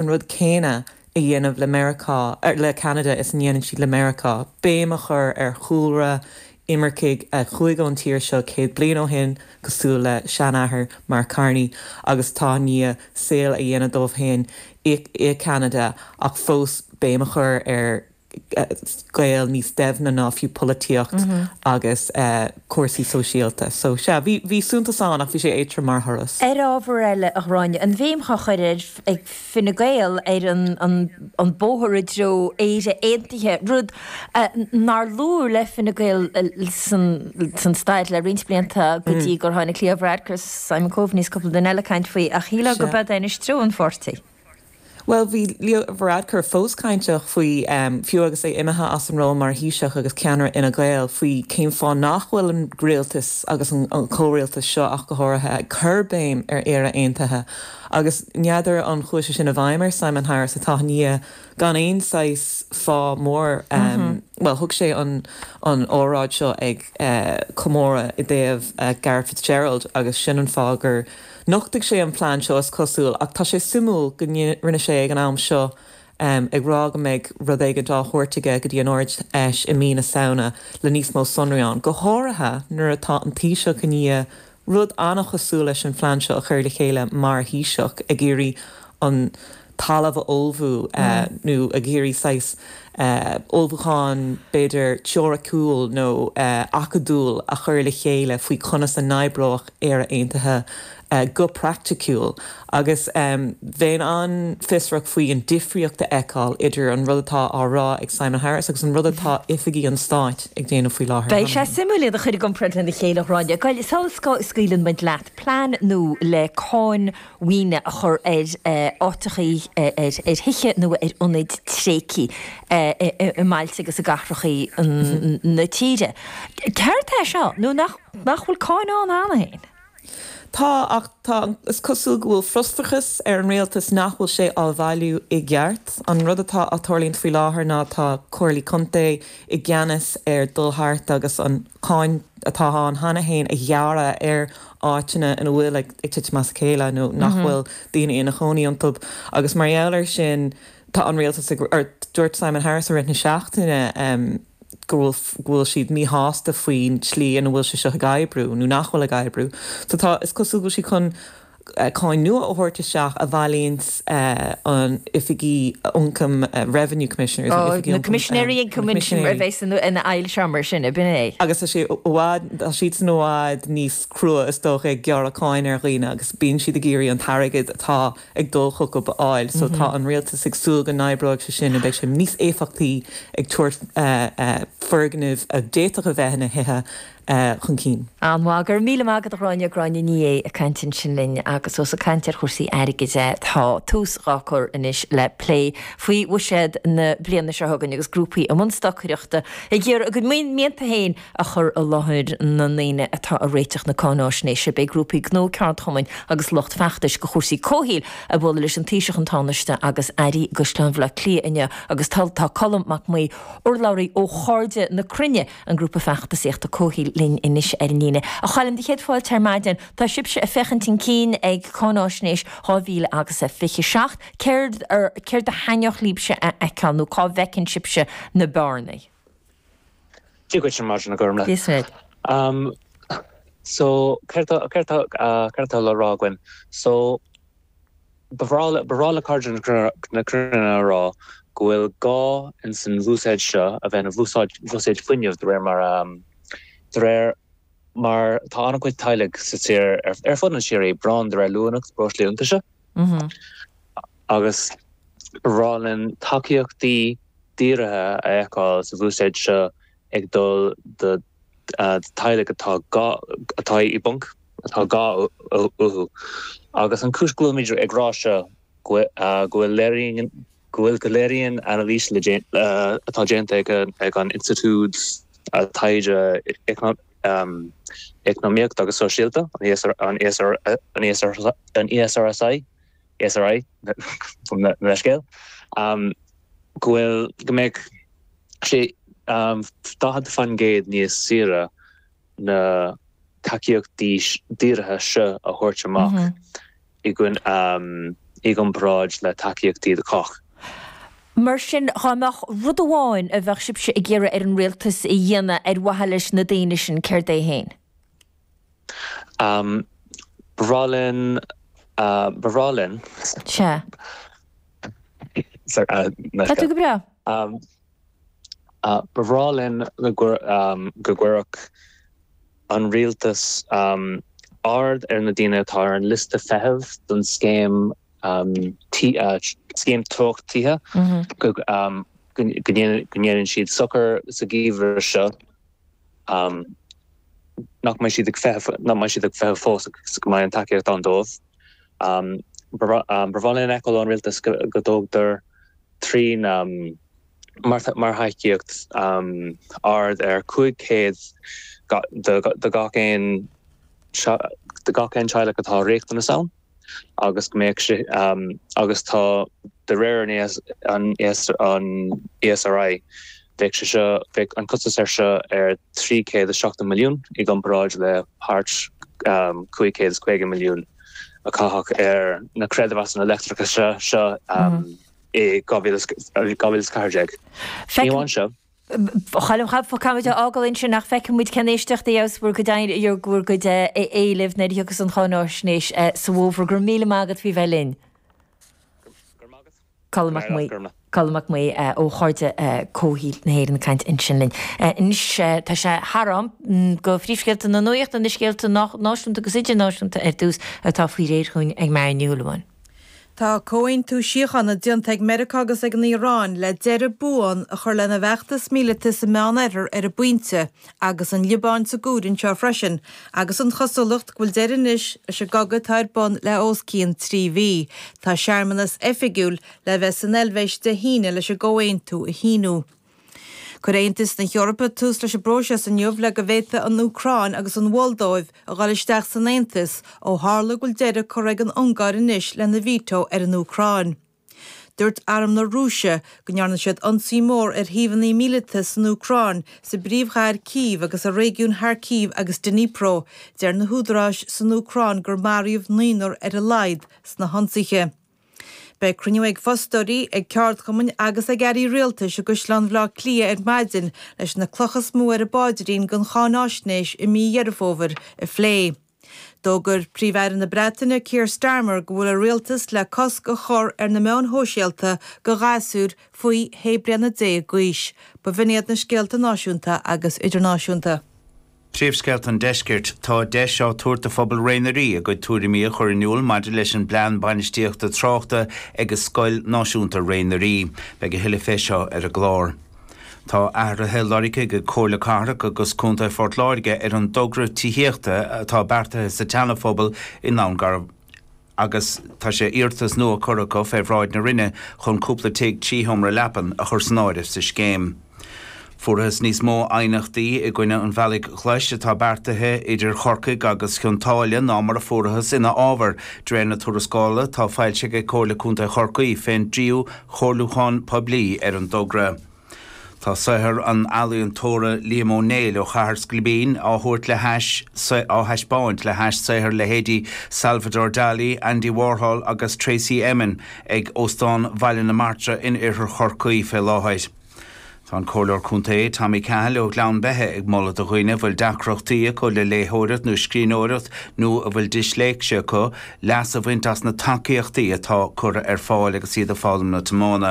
an rud céanna a dhéanamh le Meiriceá, er, le Ceanada is a ndéanann siad le Meiriceá, béim a chur ar chúlra imircigh a chuaigh ón tír seo céad bliain ó shin, cosúil le seanathair Mark Carney, agus atá i ndiaidh saol a dhéanamh dóibh féin i, i Ceanada, ach fós béim a chur ar. gaol níos doimhne ná fiú polaitíocht agus cúrsaí sóisialta. So, sea, bhí, bhí suntas ann ach bhí sé éadtrom mar thuras. Ar ábhar eile, a Ghráinne, an bhéim á chur ar, ag Fine Gael ar an, an, an bóthar i dtreo Éire Aontaithe, rud nár luadh le Fine Gael san, san stair le roinnt blianta go dtí gur tháinig Leo Varadkar, Simon Coveney is cúpla duine eile ag caint faoi ach shílfeá go mb'é anois treo an pháirtí. Bhuel, bhí Leo Varadkar fós cainteach faoi, fiú agus é imithe as an ról mar Thaoiseach agus ceannaire Fhine Gael, faoi cén fáth nach bhfuil an rialtas, agus an comhrialtas seo ach go háirithe, ag cur béim ar Éire Aontaithe. Agus n'fheadar an chuaigh sé sin i bhfeidhm ar Simon Harris atá i ndiaidh gan aon saghas fáth mór, bhuel, thug sé an óráid seo ag comóradh i dtaobh Garret Fitzgerald agus sin an fáth gur, Nochtaigh sé an plean seo is cosúil, ach tá sé suimiúil go rinne sé ag an am seo, ag rá go mbeidh rud éigin á thabhairt aige go dtí an Ard Fheis i mí na Samhna le níos mó sonraí ann, go háirithe nuair atá an Taoiseach i ndiaidh rud an-chosúil leis an phlean seo a chur le chéile mar Thaoiseach, ag iarraidh an. talamh a ullmhú nó ag iarraidh saghas ullmhúcháin b'fhéidir teoiriciúil nó acadúil a chur le chéile faoi conas a n-oibreodh Éire Aontaithe go praiticiúil agus bheinn an-fhiosrach faoi an difríocht a fheiceáil idir an rud atá á rá ag Simon Harris agus an rud atá oifigí an stáit ag déanamh faoi láthair. Beidh sé suimiúil iad a chur i gcomparáid lena chéile, a Ghráinne. Sula scaoileann muid leat, plean nua le cáin maoine a chur ar áiteachaí, ar thithe nó ar ionaid tréigthe i mbailte agus i gcathrachaí na tíre. Céard é seo, nó nach bhfuil cáin ann cheana féin? Tá, ach is cosúil go bhfuil frustrachas ar an rialtas nach bhfuil sé á bhailiú i gceart. An rud a tharlaíonn faoi láthair ná tá comhairlí contae i gceannas ar dhul thart agus an cháin atá ann cheana féin a ghearradh ar áiteanna ina bhfuil ag titim as a chéile nó nach bhfuil daoine ina chónaí iontu agus mar gheall air sin tá an rialtas ag, or dúirt Simon Harris i rith na seachtaine go bhfuil, go bhfuil siad míshásta faoin tslí ina bhfuil sé seo ag oibriú nó nach bhfuil ag oibriú. So tá, is cosúil go bhfuil siad chun cáin nua a thabhairt isteach a bhailíonns, an oifig ioncaim, Revenue Commissioners, an oifig ioncaim. Ó, na Coimisinéirí Ioncaim ansin a bheas ina bhun seo mar sin, ab in é? Agus tá sé i bhfad, tá siadsan i bhfad níos crua is dócha ag gearradh cáin ar dhaoine agus bíonn siad ag iarraidh an t-airgead atá ag dul chucu a fháil so tá an rialtas ag súil go n-oibreoidh sé sin, beidh sé níos éifeachtaí ag tabhairt foirgneamh a d'fhéadfadh a bheith ina dtithe, a chun cinn. An-mhaith. Go raibh míle maith agat, a Ghráinne, Gráinne Ní Aodha ag caint ansin linn agus ós ag caint ar chúrsaí airgid é, tá tús dhá cur anois le plé faoi bhuiséad na bliana seo chugainn agus grúpaí i mbun stocaireachta ag iarraidh a gcuid mianta féin a chur i láthair na ndaoine atá ag réiteach na cáináisnéise. Beidh grúpaí gnó, ceardchumainn agus lucht feachtais do chúrsaí comhshaoil ag bualadh leis an Taoiseach, an Tánaiste agus Airí i gCaisleán Bhleá Cliath inniu agus tá Colm Mac Maoí, urlabhraí ó Chairde na Cruinne, an grúpa feachtasaíochta Comhshaoil linn anois ar an líne. A Choilm, do chéad fáilte ar maidin. Tá sibhse ag féachaint chun cinn ag Cáináisnéis dhá mhíle agus a fiche seacht. Céard, céard a thaitneodh libhse a fheiceáil nó cá bhfeiceann sibhse na bearnaí? Dia duit ar maidin, a Ghormfhlaith. Dia duit. So, céard atá, céard atá, céard atá le rá againn? So, Ba bhreá le Cairde na Cruinne a rá go bhfuil gá ins an bhuiséad seo a bheith ina bhuiséad fuinnimh de réir mar a, de réir mar tá an-chuid teaghlaigh sa tír, ar fud an tír, i bpráinn de réir luaineacht breoslaí iontaise. Agus ba bhreá linn tacaíochtaí dírithe a fheiceáil sa bhuiséad seo ag dul do teaghlaigh atá i bponc. atá gá uathu. Agus an chúis go bhfuilimid ag rá seo go bhfuil léiríonn go léiríonn anailís atá déanta ag an Institiúid Taighde Eacnamaíochta agus Sóisialta, an ESRI, gabh mo leithscéal, go bhfuil go mbeidh sé 40% níos saoire na tacaíochtaí dírithe seo a thabhairt amach i gcomparáid le tacaíochtaí do chách. Mar sin, dá mbeadh rud amháin a bheadh sibhse ag iarraidh ar an rialtas a dhéanamh ar mhaithe leis na daoine sin, céard é féin? Ba bhreá linn, ba bhreá linn. Sea. Tá tú go breá. Ba bhreá linn go gcuirfeadh an Rialtas aird ar na daoine atá ar an liosta feithimh don scéim, scéim Teocht Tithe, go ndéanann siad sochar sa gheimhreadh seo, nach mbeidh siad ag feitheamh fós agus go mbeidh an tacaíocht ann dóibh. Ba bhreá linn a fheiceáil ón Rialtas go dtógtar trína mbearta mar thacaíocht thart ar 500 do gach aon teaghlach atá riachtanas ann agus go mbeadh sé agus tá de réir an ESRI bheadh sé seo bheadh an costas ar seo ar 370 milliún i gcomparáid le thart 550 milliún. a caitheadh ar na creidmheasanna leictreachais seo i 2014. A Choilm, caithfidh, caithfidh muid é a fhágáil ansin ach feicfidh muid cén éisteacht a gheobhas bhur gcuid éilimh, bhur gcuid éilimh nuair a thiocfas an cháinaisnéis sa bhfómhar. Go raibh míle maith agat faoi bheith linn. Go raibh maith agat. Colm Mac Aodha, Colm Mac Aodha ó Chairde Comhshaoil na hÉireann ag caint ansin linn. Anois tá sé thar am do phríomhscéalta na nuachta, na scéalta náisiúnta agus idirnáisiúnta ar dtús, atá faoi réir chugainn ag Marian Ní Shúilleabháin. Tá comhaontú síochána déanta ag Meiriceá agus ag an Iaráin le deireadh buan a chur lena bhfeachtas míleata sa Meánoirthear ar an bpointe Agus an Liobáin sa gcúram seo freisin, agus an chosúlacht go bhfuil deireadh anois leis an gcogadh atá ar bun le os cionn trí mhí, tá searmanas oifigiúil le bheith san Eilvéis Dé hAoine leis an gcomhaontú a shíniú. Chuir Aontas na hEorpa tús leis an bpróiseas inniu le go bhféadfadh an Úcráin agus an Mholdóiv a dhul isteach san Aontas ó tharla go bhfuil deireadh curtha ag an Ungáir anois lena veto ar an Úcráin. Dúirt Arm na Rúise go ndearna siad ionsaí mór ar shuíomhanna míleata san Úcráin, sa bpríomhchathair Cív agus i réigiúin Kharkiv agus Dnipro. Deir na húdaráis san Úcráin gur maraíodh naonúr ar a laghad sna hionsaithe. Beidh cruinniú ag fostóirí, ag ceardchumainn agus ag airí rialtais i gCaisleán Bhaile Átha Cliath ar maidin leis na clocha is mó ar a bpaidrín don cháinaisnéis i mí Dheireadh Fómhair a phlé. D'fhógair Príomh-Aire na Breataine Keir Starmer go bhfuil a rialtas le cosc a chur ar na meáin shóisialta do ghasúir faoi shé bliana déag d'aois. B'in iad na scéalta náisiúnta agus idirnáisiúnta. Príomhscéalta an Deiscirt, Tá deis á tabhairt do phobal Réidh na nDoirí a gcuid tuairimí a chur in iúl maidir leis an bplean bainistíochta tráchta ag Scoil Náisiúnta Réidh na nDoirí. Beidh a thuilleadh faoi seo ar an gclár. Tá athruithe lorgtha ag Comhairle Cathrach agus Contae Phort Láirge ar an dtogra tithíochta atá beartaithe sa tSeanaphobal in nDún Garbhán agus tá iarratas nua curtha acu fé bhráid na Roinne chun cúpla tigh trí sheomra leapan a chur san áireamh sa scéim. Fuarthas níos mó aighneachtaí i gcoinne an bhealaigh ghlais atá beartaithe idir Chorcaigh agus Cionn tSáile ná mar a fuarthas ina fhábhar, de réir na tuarascála atá foilsithe ag Comhairle Contae Chorcaí fén tríú Comhairliúchán Poiblí ar an dtogra. Tá saothar an ealaíontóra Liam Ó Néill ó Chathair Scoilbín á thabhairt le hais á thaispeáint le hais saothar leithéidí Salvador Dali, Andy Warhol agus Tracey Emin ag Óstán Bhaile na Martra in Oirthear Chorcaí fé láthair. Tá an Comhairleoir Contae, Tommy Cahill ó Ghleann Beithe ag moladh do dhaoine a bhfuil deacrachtaí acu le léitheoireacht nó scríbhneoireacht nó a bhfuil disléicse acu, leas a bhaint as na tacaíochtaí atá curtha ar fáil agus iad ag foghlaim na tiomána.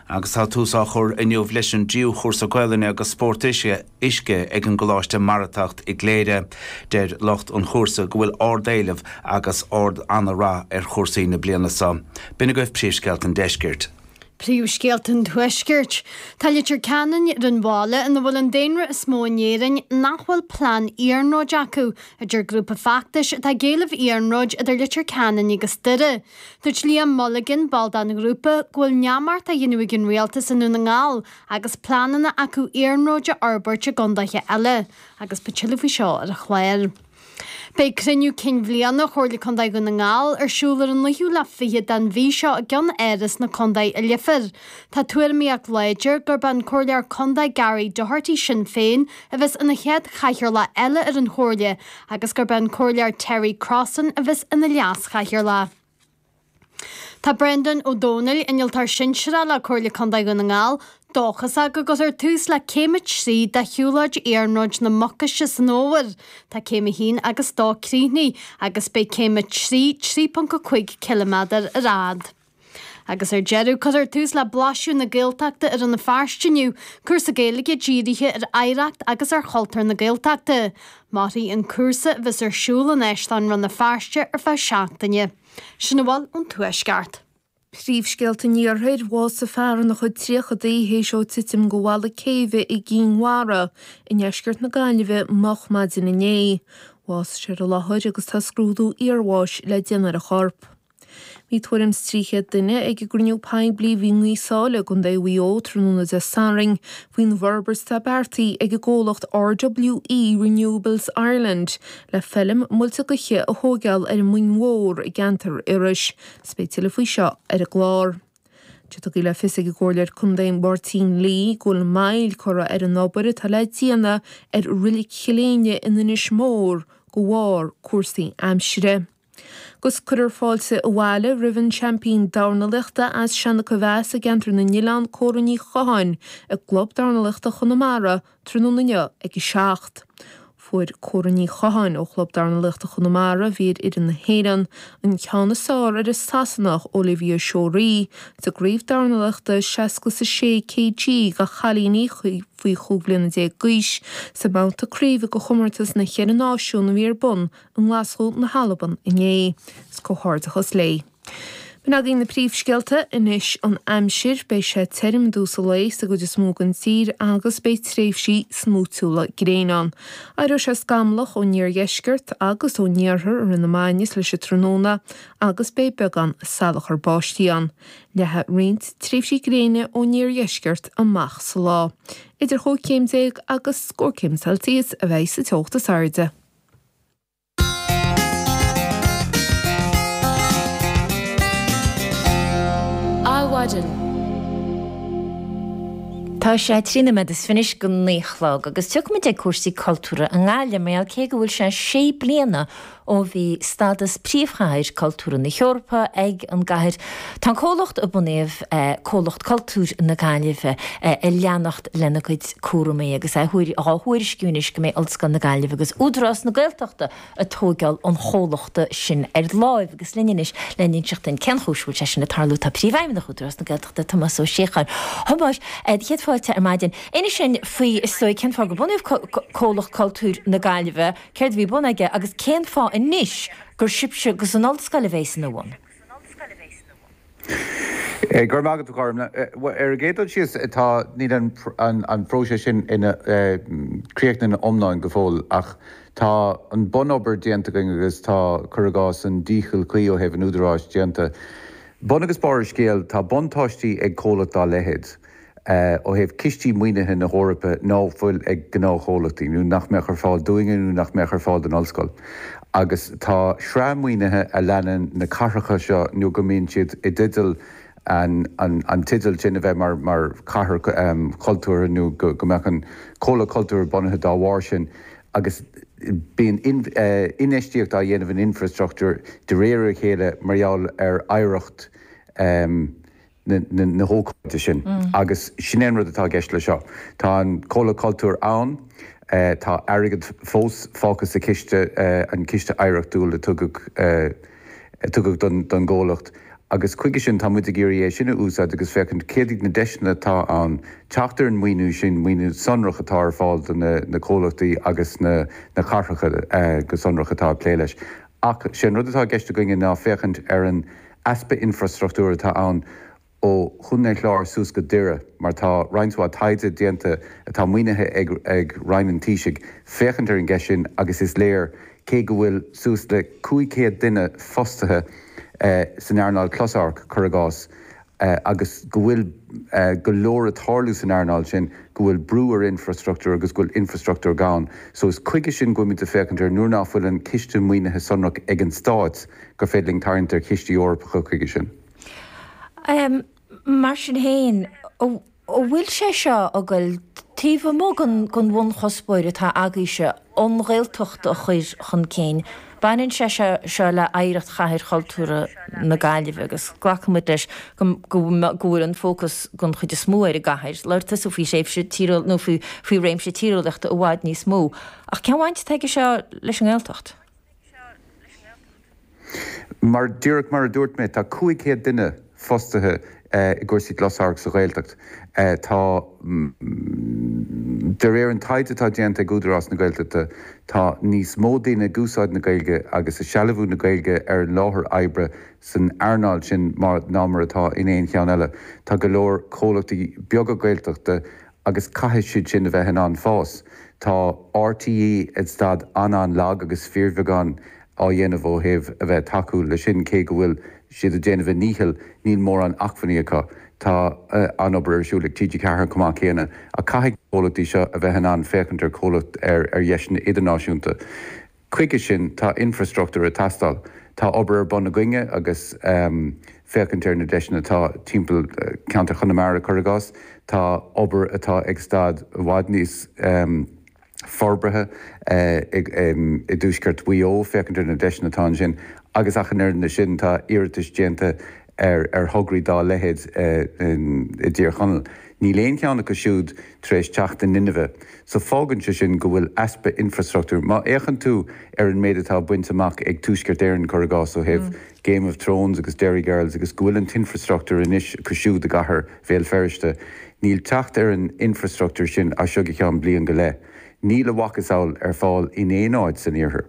Agus tá tús á chur inniu leis an dtríú cúrsa Gaolainne agus Spórt Uisce ag an gColáiste Mara Teacht i gCléire, deir lucht an chúrsa go bhfuil ard-éileamh agus ard ana-rath ar chúrsaí na bliana seo. B'in agaibh príomhscéalta an deiscirt. Príomhscéalta an Tuaiscirt. Tá Leitir Ceanainn ar an bhaile ina bhfuil an daonra is mó in Éirinn nach bhfuil plean iarnróid acu, a deir grúpa feachtais atá ag éileamh iarnróid idir Leitir Ceanainn agus Doire. Dúirt Liam Mulligan, ball den ghrúpa, go bhfuil neamart á dhéanamh ag an rialtas i nDún na nGall agus pleananna acu iarnróid a fhorbairt i gcondaetha eile, agus ba tuilleadh faoi seo ar an chlár. Beidh Cruinniú Cinn Bhliana Chomhairle Contae Dhún na nGall ar siúl ar an naoú lá fichead den mhí seo i gCeannáras na Contae i Leifear. Tá tuairimíocht láidir gurb é an Comhairleoir Contae Gary Doherty Sinn Féin a bheas ina chéad chathaoirleach eile ar an Chomhairle agus gurb é an Comhairleoir Terry Crossan a bheas ina leas-chathaoirleach. Tá Brendan Ó Domhnaill, Innealtóir Sinsearach le Comhairle Contae Dhún na nGall, dóchasach go gcuirfear tús le céim a trí de shiúlóid Iarnróid na Mucaise san fhómhar, tá céim a haon agus dó críochnaithe agus beidh céim a trí 3.5 cilimeadar ar fad. Agus ar deireadh, cuirfear tús le Blaiseadh na Gaeltachta i Rann na Feirste inniu, cúrsa Gaeilge dírithe ar oidhreacht agus ar chultúr na Gaeltachta. Mairfidh an cúrsa a bheas ar siúl in Áislann Rann na Feirste ar feadh seachtaine. Sin a bhfuil ón Tuaisceart. Príomhscéalta an Iarthair, Bhásaigh fear ina chuid tríochadaí théis dó titim de bhalla céibhe i gCinn Mhara i ndeisceart na Gaillimhe moch maidin inné. Bhásaigh sé ar an láthair agus tá scrúdú iarbháis le déanamh ar a chorp. Bhí tuairim 's trí chéad duine ag an gcruinniú poiblí a bhí i nGaoth Sáile, gContae Mhuigh Eo, tráthnóna Dé Sathairn faoin bhforbairt atá beartaithe ag an gcomhlacht RWE Renewables Ireland le feilm muilte gaoithe a thóigeáil ar an Mhuing Mhór i gceantar Iorrais. Is beidh tuilleadh faoi seo ar an gclár. Tugadh le fios ag an gComhairleoir Contae Máirtín Lee go bhfuil moill curtha ar an obair atá le déanamh ar Reilig Chill Éinne in Inis Mór de bharr cúrsaí aimsire. 'Gus cuirfear fáilte abhaile roimh an seaimpín dornalaiochta as seisiún a bheas i gceantar na nOileán Córa Ní Chatháin ag Club Dornalaiochta Chonamara tráthnóna inniu ag a seacht. Fuair Córa Ní Chatháin ó Chlub Dornalaiochta Chonamara, a bhí ar fhoireann na hÉireann, an ceann is fearr ar an Sasanach Olivia Shorey sa gCraobh Dornalaiochta 66 kg de chailíní faoi chúig bhliana déag d'aois sa mbabhta craoibhe de chomórtas na gCeithre Náisiún a bhí ar bun i nGlaschú na hAlban inné. Is comhghairdeachas léi. B'in agaibh na príomhscéalta. Anois an aimsir. Beidh sé tirim i dtús an lae sa gcuid is mó den tír agus beidh tréimhsí smúitiúla gréine ann. Éireoidh sé scamallach ón iardheisceart agus ón iarthar i rith na maidine is leis an tráthnóna agus beidh beagán salachair báistí ann. Leathfaidh roinnt tréimhsí gréine ón iardheisceart amach sa lá. Idir chúig chéim déag agus scór céim Celsius a bheidh sa teocht is airde. Adhmhaidin. Tá sé trí noiméad is fichid go naoi a chlog agus tiocfaimid chuig cúrsaí cultúra i nGaillimh, mar cé go bhfuil sé sé bliana ó bhí stadas Príomhchathair Cultúrtha na hEorpa ag an gcathair, tá an comhlacht a bunaíodh, Comhlacht Cultúir na Gaillimhe, ag leanacht lena gcuid. cúramaí agus é dhá thuairisciú anois go mbeidh Ollscoil na Gaillimhe agus Údarás na Gaeltachta ag tóigeáil an chomhlachta sin ar láimh agus linn anois lena inseacht dúinn cén chúis a bhfuil sé sin ag tarlú. Tá Príomhfheidhmeannach Údarás na Gaeltachta, Tomás Ó Síocháin. A Thomáis, céad fáilte ar maidin. Inis dúinn faoi is dóigh cén fáth gur bunaíodh Comhlacht Cultúir na Gaillimhe, céard a bhí ar bun aige agus cén fáth anois gur sibhse agus an Ollscoil a bheidh ina bhun? san ollscoil a bheas nua. Go raibh maith agat, a Ghormfhlaith. Ar an gcéad dul síos, tá, níl an próiseas sin críochnaithe ina iomláine go fóill ach tá an bun-obair déanta againn agus tá, cuir i gcás, an dícheall cuí ó thaobh an údaráis déanta. Bun agus barr an scéil, tá buntáistí ag comhlacht dá leithéid. ó thaobh cistí maoinithe na hEorpa ná fuil ag gnáthchomhlachtaí, nó nach mbeadh ar fáil dúinne nó nach mbeadh ar fáil don Ollscoil. Agus tá sraith maoinithe a leanann na cathracha seo nó go mbíonn siad i dteideal an teideal sin a bheith mar chathair chultúrtha nó go mbeadh an comhlacht cultúrtha bunaithe dá bharr sin agus bíonn infheistíocht á dhéanamh in infreastruchtúr de réir a chéile mar gheall ar oidhreacht na na hócáide sin. Agus sin é an rud atá i gceist leis seo. Tá an Comhlacht Cultúir ann, tá airgead fós fágtha sa chiste, an Ciste Oidhreachtúil a tugadh a tugadh don don gComhlacht, agus chuige sin tá muid ag iarraidh é sin a úsáid agus féachaint céard iad na deiseanna atá ann teacht ar an maoiniú sin, maoiniú sonrach atá ar fáil do na na Comhlachtaí agus na na cathracha go sonrach atá ag plé leis. Ach sé an rud atá i gceist againne ná féachaint ar an easpa infrastruchtúir atá ann ó Chontae an Chláir suas go Doire mar tá roinnt mhaith taighde déanta atá maoinithe ag Roinn an Taoisigh féachaint ar an gceist sin agus is léir cé go bhfuil suas le 500 duine fostaithe san earnáil closamhairc, cuir i gcás, agus go bhfuil go leor ag tarlú san earnáil sin, go bhfuil brú ar infreastruchtúr agus go bhfuil infreastruchtúr gann. So is chuige sin go bhfuil muid le féachaint ar nuair ná fuil an ciste maoinithe sonrach ag an Stát gur féidir linn tarraingt ar chistí Eorpacha chuige sin. Mar sin féin, An bhfuil sé seo a goil taobh amuigh den bhunchuspóir atá agaíbhse, an Ghaeltacht a chur chun cinn? Baineann sé seo le hoidhreacht Chathair Chultúrtha na Gaillimhe agus glacann muid leis go bhfuil an fócas den chuid is mó ar an gcathair, lárnach sa faoi thréimhse tíreolaíoch nó faoi réimse tíreolaíochta i bhfad níos mó. Ach cén bhaint atá aige seo leis an nGaeltacht? Mar, díreach mar a dúirt mé, tá 500 duine fostaithe i gcúrsaí closamhairc sa Ghaeltacht. Tá, de réir an taighde atá déanta ag Údarás na Gaeltachta, tá níos mó daoine ag úsáid na Gaeilge agus ag sealbhú na Gaeilge ar an láthair oibre san earnáil sin ná mar atá in aon cheann eile. Tá go leor comhlachtaí beaga Gaeltachta Agus caithfidh siad sin a bheith in ann fás. Tá RTÉ ag staid an-an-lag agus fíorbheagán á dhéanamh ó thaobh a bheith ag tacú leis sin, cé go bhfuil siad ag déanamh a ndícheall, níl mórán acmhainní acu. Tá an-obair ar siúl ag TG4 chomh maith céanna, ach caithfidh na comhlachtaí seo a bheith in ann féachaint ar comhlacht ar dheiseanna idirnáisiúnta. Chuige sin tá infreastruchtúr ag teastáil. Tá obair ar bun againne agus féachaint ar na deiseanna atá timpeall ceantar Chonamara, cuir i gcás. Tá obair atá ag staid i bhfad níos forbartha i dtuaisceart Mhaigh Eo, féachaint ar na deiseanna atá ansin agus ach an oiread le sin tá iarratais déanta ar thograí dá leithéid i dTír Chonaill. Níl aon cheann acu siúd tar éis teacht in inmhe, so fágann sé sin go bhfuil easpa infreastruchtúir. Má fhéachann tú ar an méid atá bainte amach ag Tuaisceart Éireann, cuir i gcás, ó thaobh Game of Thrones agus Derry Girls agus go bhfuil an t-infreastruchtúr anois acu siúd i gcathair Bhéal Feirste, níl teacht ar an infreastruchtúr sin as seo go ceann bliain go leith. Níl a mhacasamhail ar fáil in aon áit san Iarthar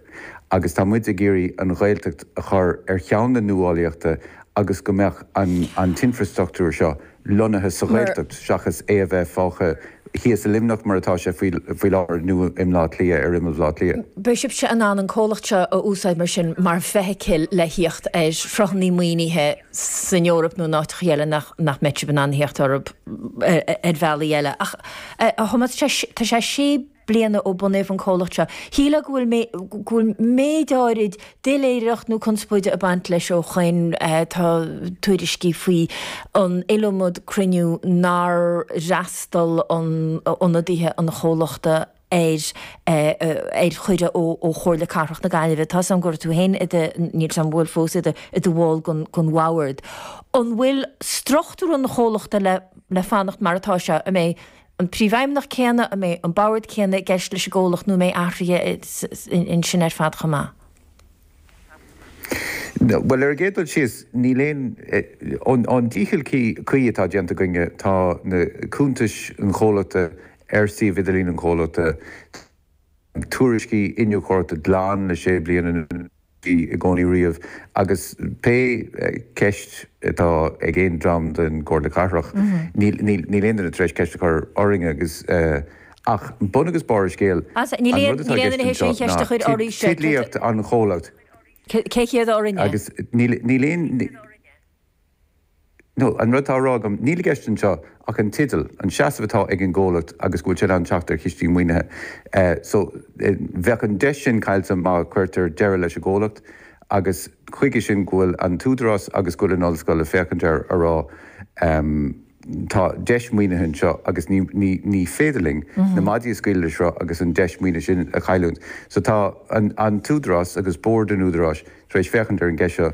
agus tá muid ag iarraidh an Ghaeltacht a chur ar cheann an nuálaíochta agus go mbeadh an t-infreastruchtúr seo lonnaithe sa Ghaeltacht seachas é a bheith fágtha thíos i Luimneach mar atá sé faoi láthair nó i mBleá Cliath, ar imeall Bhleá Cliath. Beidh sibhse in ann an comhlacht seo a úsáid mar sin mar feithicil le thíocht ar shruthanna maoinithe. san Eoraip nó in áiteachaí eile nach mbeadh sibh in ann theacht orthu ar bhealaí eile. Ach a Thomáis, tá sé sé bliana ó bunaíodh an comhlacht seo. Shílfeá go go bhfuil méid áirid doiléireacht nó conspóide ag baint leis ó shoin. Tá tuairiscí faoi an iliomad cruinniú nár fhreastal ionadaithe an chomhlachta ar ar chuireadh ó ó Chomhairle Cathrach na Gaillimhe. Tá's a'm go raibh tú féin i do, níl 's a'm an bhfuil fós, i do i do bhall gon gon Bhoard. An bhfuil struchtúr an chomhlachta le le fanacht mar atá sé? An mbeidh an Príomhfheidhmeannach céanna, an mbeidh an Board céanna i gceist leis an gcomhlacht nó an mbeidh athruithe i in in sin ar fad chomh maith? Bhuel, ar an gcéad dul síos, níl aon, ón dícheall cuí atá déanta againne, tá na cuntais an chomhlachta ar suíomh idirlín an chomhlachta, tá tuairiscí iniúchóireachta glan le sé bliana anuas, i gcónaí riamh, agus pé ceist atá ag aon dream den Chomhairle Cathrach, níl aon duine tar éis ceist a chur orainne agus. Ach bun agus barr an scéil, Sea, níl an rud atá i aon gceist duine anseo théis aon ná cheist a chur oraibh seo, cé. teidlíocht an chomhlacht. Cé hiad ár n-inne? Agus níl aon ní. Nó, an rud atá á rá agam, níl i gceist anseo ach an teideal, an seasamh atá ag an gcomhlacht agus go bhfuil sé in ann teacht ar chistí maoinithe. So, bheadh an deis sin caillte má chuirtear deireadh leis an gcomhlacht agus chuige sin go bhfuil an tÚdarás agus go bhfuil an Ollscoil ag féachaint air ag rá, Tá deis maoinithe anseo agus ní ní ní féidir linn na maidí a scaoileadh le sruth agus an deis maoinithe sin a chailliúint. So tá an an tÚdarás agus Bord an Údaráis tar éis féachaint ar an gceist seo.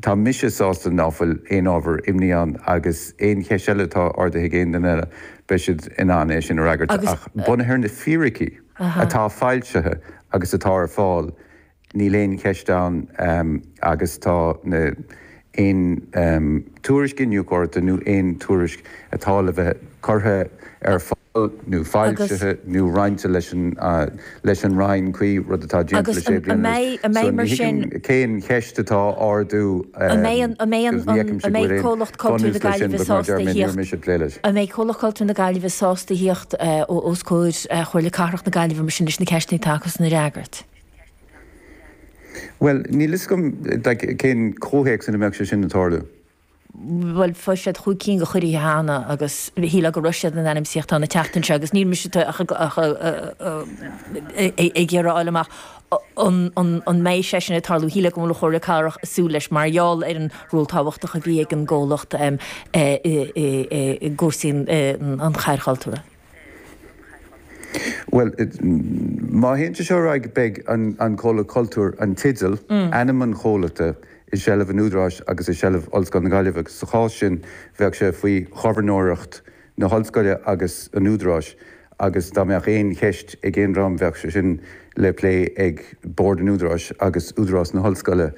Tá mise sásta ná fuil aon ábhar imní ann agus aon cheist eile atá ardaithe ag aon duine eile beidh siad in ann é sin a fhreagairt ach bunaithe ar na fíricí atá foilsithe agus atá ar fáil Níl aon cheist ann agus tá na, aon tuairisc iniúchóireachta nó aon tuairisc atá le bheith curtha ar fáil nó foilsithe nó roinnte leis an, leis an Roinn cuí, rud atá déanta le sé bliana anuas. an So mbeidh, an mbeidh, ní mar sin. thuigim cén cheist atá á ardú An mbeidh an, an mbeidh agus an, ní an, fheicimse an go bhfuil mbeidh aon Comhlacht Cultúir na bhunús leis sin Gaillimhe but mar a deir sásta a mé, níor thíocht, mise ag plé leis. an mbeidh Comhlacht Cultúir na Gaillimhe sásta a thíocht os comhair Chomhairle Cathrach na Gaillimhe mar sin leis na ceisteanna atá acusan a fhreagairt? Bhuel, níl 'fhios agam cén comhthéacs ina mbeadh sé sin ag tarlú. Bhuel, fuair siad chúig cinn go cuirí cheana agus shíleadh go raibh siad in ainm is a thíocht ann an tseachtain seo agus níl mise ach ag iarraidh a fháil amach an mbeidh sé sin ag tarlú. Shíleadh go bhfuil an Chomhairle Cathrach ag súil leis mar gheall ar an ról tábhachtach a bhí ag an gcomhlacht i gcúrsaí an Chathair Chultúrtha. Bhuel, má théann sé seo ar aghaidh beidh an Comhlacht Cultúir, an teideal, ainm an chomhlachta, i seilbh an Údaráis agus i seilbh Ollscoil na Gaillimhe agus sa chás sin bheadh sé faoi ghobharnóireacht na hOllscoile agus an Údaráis agus dá mbeadh aon cheist ag aon dream bheadh sé sin le plé ag Bord an Údaráis agus Údarás na hOllscoile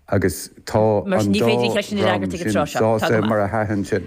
agus tá Mar sin an ní dá féidir an cheist sin a fhreagairt dream ag an sin tráth seo. Tá go sásta maith. mar a sheasann sin.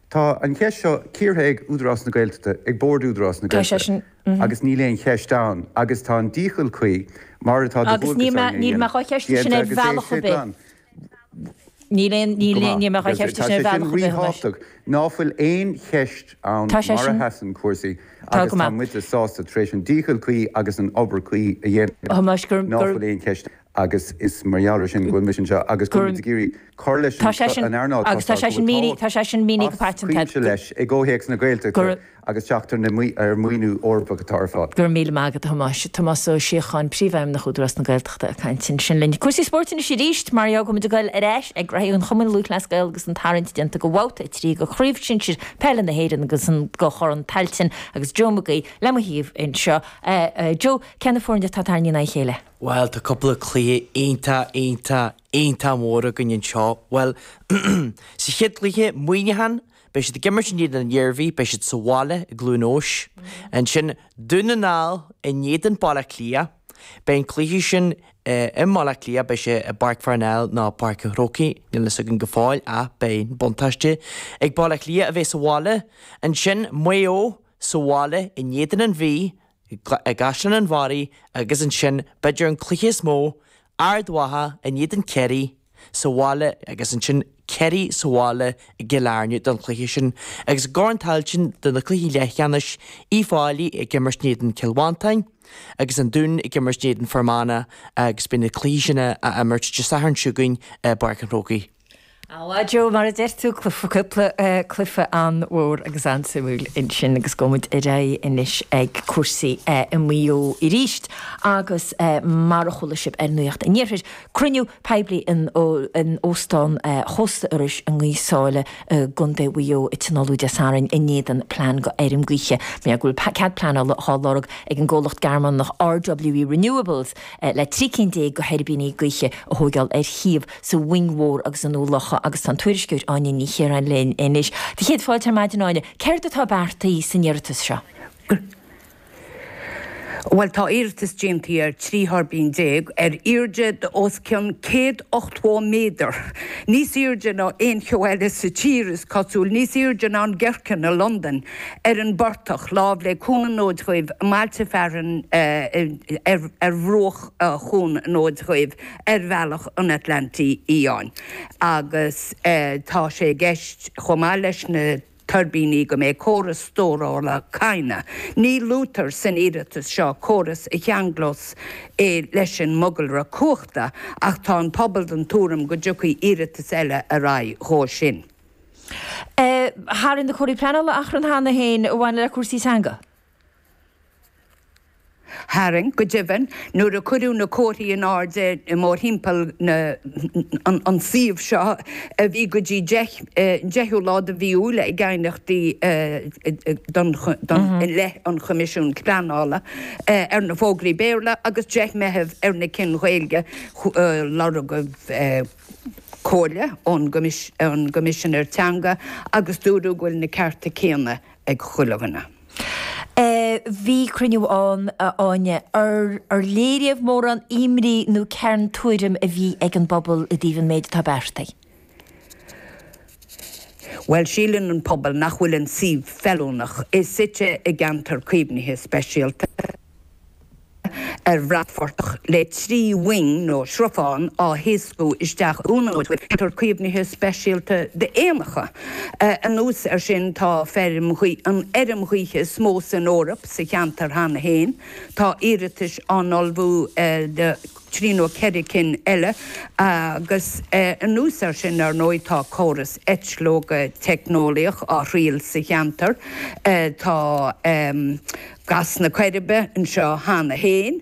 Tá an cheist seo cíortha ag Údarás na Gaeltachta, ag Bord Údarás na Gaeltachta, agus níl aon cheist ann, agus tá an dícheall cuí, mar atá de dhualgas orainn a dhéanamh, déanta agus é sé glan. Go maith. Agus tá sé sin ríthábhachtach ná fuil aon cheist ann mar a sheasann cúrsaí agus tá muide sásta, tar éis an dícheall cuí agus an obair cuí a dhéanamh, ná fuil aon cheist ann. agus is mar gheall air sin go bhfuil mise anseo agus go bhfuil muid ag iarraidh cur leis an earnáil toisc go bhfuil tábhacht as cuimse leis i gcomhthéacs na Gaeltachta agus teacht ar mhaoiniú Eorpach atá ar fáil. Go raibh míle maith agat, a Thomáis. Tomás Ó Síocháin, Príomhfheidhmeannach Údarás na Gaeltachta ag caint ansin linn. Cúrsaí spóirt anois arís, mar gheall go bhfuil muid ag goil ar ais ag reathaí an Chumainn Lúthchleas Gael agus an tarraingt déanta go bhabhta a trí de Chraobh Shinsir Peile na hÉireann agus go Corn Tailteann agus Joe McGee le mo thaobh anseo. Joe, cé na foirne atá tarraingthe in aghaidh a chéile? Bhuel, tá cúpla cluiche iontach, iontach, iontach mór againn anseo. Bhuel, sa chéad chluiche, Muineachán, beidh siad ag imirt in éadan an Iarmhí, beidh siad sa bhaile i gCluain Eois. Ansin, Dún na nGall in éadan Baile Átha Cliath. Beidh an cluiche sin i mBaile Átha Cliath, beidh sé i bPáirc Pharnell nó Páirc an Chrócaigh, níl a fhios againn go fóill ach beidh an buntáiste ag Baile Átha Cliath a bheith sa bhaile. Ansin, Maigh Eo sa bhaile in éadan an Mhí, i gCaisleán an Bharraigh agus ansin, b'fhéidir, an cluiche is mó, Ard Mhacha in éadan Kerry sa bhaile agus ansin Kerry sa bhaile i gCill Airne don chluiche sin agus i gCorn Tailteann do na cluichí leathcheannais, Uíbh Fhailí ag imirt in éadan Chill Mhantáin agus an Dún ag imirt in éadan Fhear Manach agus beidh na cluichí sin á n-imirt Dé Sathairn seo chugainn i bPáirc an Chrócaigh. Á, a Joe, mar a deir tú, cúpla cluife an-mhór agus an-suimiúil ansin agus gabhfaidh muid ar aghaidh anois ag cúrsaí i Maigh Eo arís agus mar a chuala sibh ar Nuacht an Iarthair, cruinniú poiblí in Óstán Chósta Iorrais i nGaoth Sáile i gContae Mhaigh Eo a tionóladh Dé Sathairn in éadan plean dho fheirm gaoithe mar go bhfuil cead pleanála á lorg ag an gcomhlacht Gearmánach RWE Renewables le trí cinn déag de thuirbíní gaoithe a thóigeáil ar shuíomh sa Mhuing Mhór agus i nDún Locha agus tá an tuairisceoir Áine Ní Chiaráin linn anois. Do chéad fáilte ar maidin, Áine. Céard atá beartaithe san iarratas seo? Bhuel, tá iarratas déanta ar trí thuirbín déag ar airde de os cionn céad ochtmhó méadar, níos airde ná aon cheo eile sa tír, is cosúil, níos airde ná an Gherkin i Londain! ar an bportach, lámh le Cuan an Fhóid Dhuibh, i mbailte fearainn ar bhruach Chuan an Fhóid Dhuibh ar bhealach an Atlantaigh Fhiáin agus tá sé i gceist, chomh maith leis na tuirbíní, go mbeidh córas stórála cadhnra. Ní luaitear san iarratas seo córas a cheanglós é leis an mogalra cumhachta ach tá an pobal den tuairim go dtiocfaidh iarratas eile ar aghaidh dhó sin. Tharraing na comharthaí pleanála achrann cheana féin a bhain le cúrsaí teanga. Tharraing, go deimhin, nuair a cuireadh na comharthaí in airde mórthimpeall an suíomh seo, bhí go dtí an deichiú lá de mhí Iúil ag aighneachtaí i leith an Choimisiúin Pleanála ar na fógraí Béarla agus 10 Meitheamh ar na cinn Ghaeilge, lorgaíodh. comhairle ón gCoimisinéir Teanga agus dúradh go bhfuil na cearta céanna ag chuile dhuine. Bhí cruinniú ann, a Áine, ar léiríodh mórán imní nó cén tuairim a bhí ag an bpobal i dtaobh an méid atá beartaithe? Bhuel, síleann an pobal nach bhfuil an suíomh feiliúnach, é suite i gceantar caomhnaithe speisialta, ar bhratphortach le trí mhoing nó srutháin á thaoscadh isteach i gceantar caomhnaithe speisialta d'éanacha. Anuas air sin, tá feirm ghaoithe, an fheirm ghaoithe is mó san Eoraip, sa cheantar cheana féin. Tá iarratais á n-ullmhú ag. trí nó ceithre cinn eile, agus anuas air sin, ar ndóigh, tá córas eitleoga teicneolaíoch á thriail sa cheantar, tá gas na Coiribe anseo cheana féin.